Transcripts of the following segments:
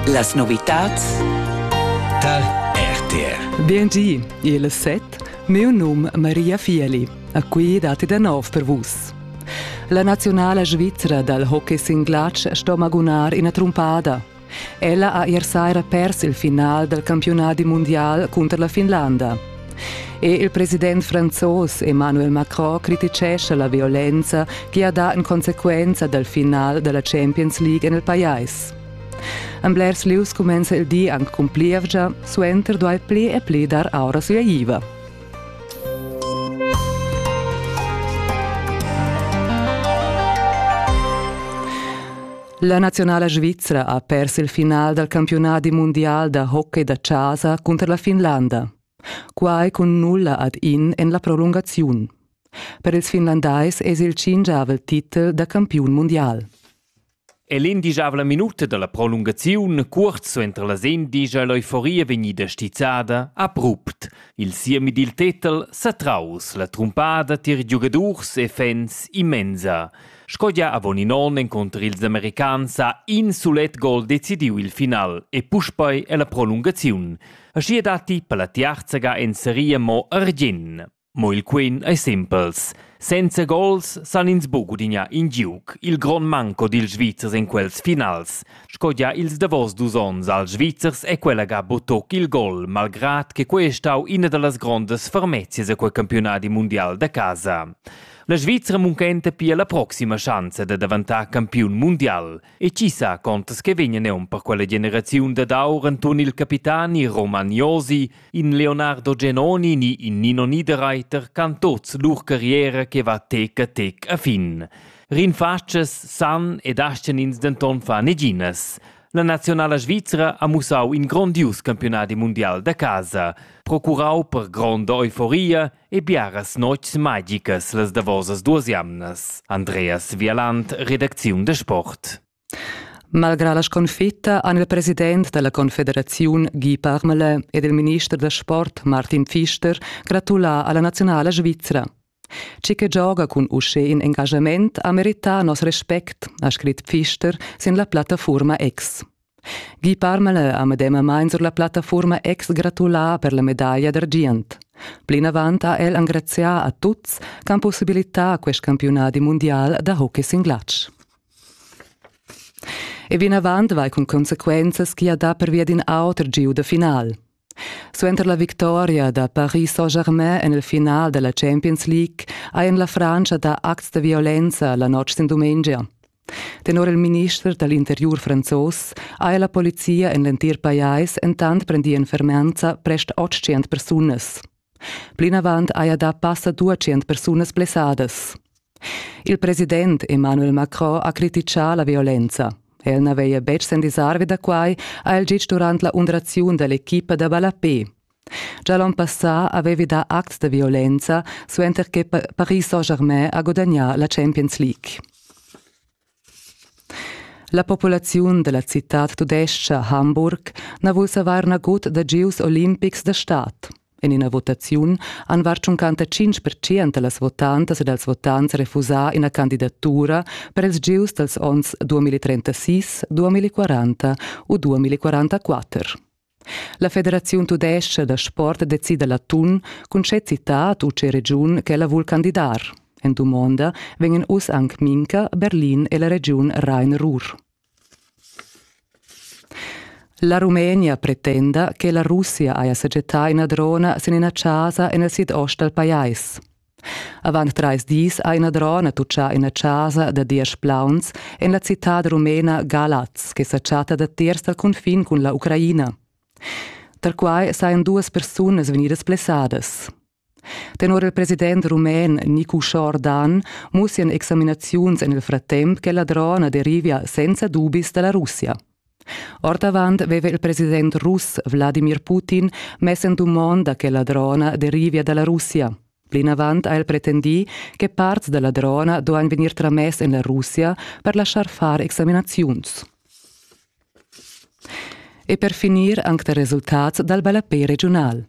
Las novitads dal RTR. Biengi, il set, mio num Maria Fieli. A qui dati da nov per vus. La nazionala svizra dal hockey singlatsch sto magunar ina trumpada. Ella ha ier saira pers il final del campionati mondial cunter la Finlanda. Er il president franzos Emmanuel Macron criticescha la violenza che ha dà en consequenza dal final da la Champions League en il pajais. En blers lieus cumenza il di anc cun plievgia, suenter duai pli e pli dar aura suleiva. La naziunala svizra ha pers il final dal campiunadi mundial da hockey da chasa cunter la Finlanda. Quai cun nulla ad in en la prolungaziun. Per ils finlandais es il cingiavel titel da campiun mundial. E l'indigiabla minuta dalla prolungaziun, kurz entr la sen digia l'euforia vegnida stizzada, abrupt. Il siemi dil tetel sa traus la trumpada tier giugadurs e fans immensa. Sco gia avon in onn encunter ils americans ha in sulet gol decidiu il final e puspei è la prolungaziun. Aschia datti per la tiarzaga en seria mo argien. Mo il quin ei simpels. Senza gols san ins buc gudignar in giug, il grond manco dils Svizzers en quels finals. Sco gia ils davos dus onns als Svizzers è quella ga butoc il gol, malgrad che quei è stau ina dallas grondas fermezias a quei campionadi mundial da casa. La Svizra munchenta pia la proxima schanza da daventar campiun mundial. E chi sa contas che vegna neun per quella generaziun dad aur Anton il capitani Roman Josi, in Leonardo Genoni ni in Nino Niederreiter can tots lur carriera che va tec a tec a fin. Rinfatschas san ed ascenins denton fa neginas. La nazionala svizra ha mussau in grondius campionadi mundial da casa, procurau per gronda euforia e biaras notgs magicas las davosas duas jamnas. Andreas Vialant, redacziun da sport. Malgrà la sconfitta han il president della Confederaziun Guy Parmelin ed il minister da sport Martin Pfister gratulà alla nazionala svizra. Ci che gioga cun uschè in engagement ha merità nos respect, ha scrit Pfister sin la plattafurma X. Guy Parmelin ha medemamain sur la plattafuorma ex gratulà per la medaglia d'argient. Plinavant ha el engrazià a tuts ch'han possibilità quest campiunadi mundial da hockey sin glatsch. E vinavant vai cun consequenzas chi ha dà pervia d'in auter giu da final. Suenter la victoria da Paris Saint-Germain en il final da la Champions League ha en la Frantscha dà acts da violenza la notg sin dumengia. Tenor il minister da l'interiur franzos ha la polizia en l'entir pajais entant prendì en fermenza prest 800 persunas. Plinavant haja dà passa duatschient persunas blessadas. Il president Emmanuel Macron ha crititgà la violenza. El n'aveva betg sendisarvi da quai, ha el gitg durant la undraziun da l'equipa da ballapé. Già l'onn passà avevi dà acts da violenza, suenter che Paris Saint-Germain ha gudagnà la Champions League. La populaziun dalla citad tudescha Hamburg na vul savar nagut da gieus olimpics da stad. En ina votaziun han var 55 percent da las votantas e dals votants refusà ina candidatura per ils gieus dals onns 2036, 2040 u 2044. La Federaziun tudescha da sport decida l'atun cun tge citad u tge regiun ch'ella vul candidar. En dumonda vegnan uss anc Minca, Berlin e la regiun Rhein-Ruhr. La Rumenia pretenda che la Russia haja sajettà ina drona sin ina chasa en il sidost dal pajais. Avant trais dis ha ina drona tutgà ina chasa da diesch plauns en la citad rumena Galaz che sa chatta datiers dal cunfin cun la Ucraina. Tar quai sajan duas persunas vegnidas blessadas. Tenor il president rumen Niku Shordan mussian examinaziuns en il frattemp che la drona derivia senza dubis da la Russia. Ordavant aveva il president russ Wladimir Putin mess en dumond da che la drona derivia da la Russia. Plinavant ha el pretendì che parts da la drona duain vegnir tramess en la Russia per laschar far examinaziuns. E per finir anche da resultats dal ballapé regiunal.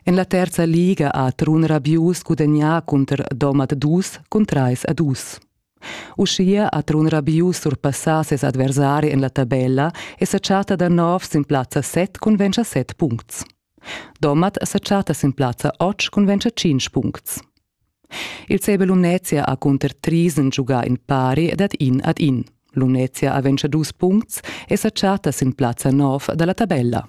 En la terza liga ha Trun Rabius gudagnà cunter Domat dus cun trais a dus. Uschia ha Trun Rabius surpassà ses adversari en la tabella e sa chatta da nov sin plazza set cun ventscha set puncts. Domat sa chatta sin plazza otg cun ventscha cinc puncts. Il CB Lumnezia ha cunter Triesen giugà in pari ed ad in ad in. Lumnezia ha ventscha dus puncts e sa chatta sin plazza nov da la tabella.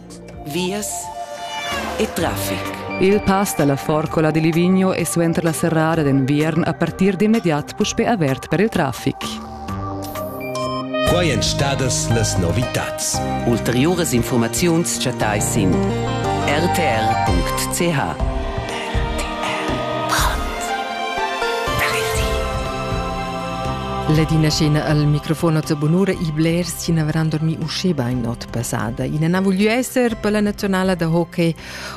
vias e traffic. Il pass dalla Forcola di Livigno è suenter la serrada d'enviern a partir d'immediat puspè avert per il traffic. Quai èn stadas las novitads. Ulteriuras informaziuns chattai sin rtr.ch. Ladina scena al microfono a Bonura, i blers sin avran dormi usceba in not pesada. Ina na vogliu esser per la nazionala da hockey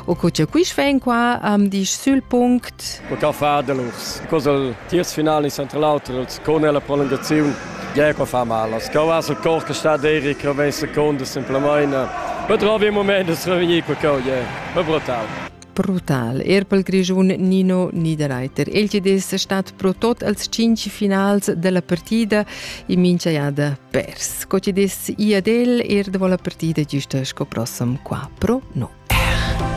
o co che quis ven qua am disch sul punct. Per ca fa del urs. Cosa il tiers final in central auter con la prolungazione Gea qua fa mal. As cau as il cor che sta deri che ven seconda semplamaina. Però vi moment es revegnir qua cau, yeah. È brutal. Brutal. Er pel Grischun Nino Niederreiter. El chi'd es stat pro tot als cinc finals della partida e mincha jada pers. Co chi'd es i ad el er dovo la partida giüsta sco prossam qua pro no.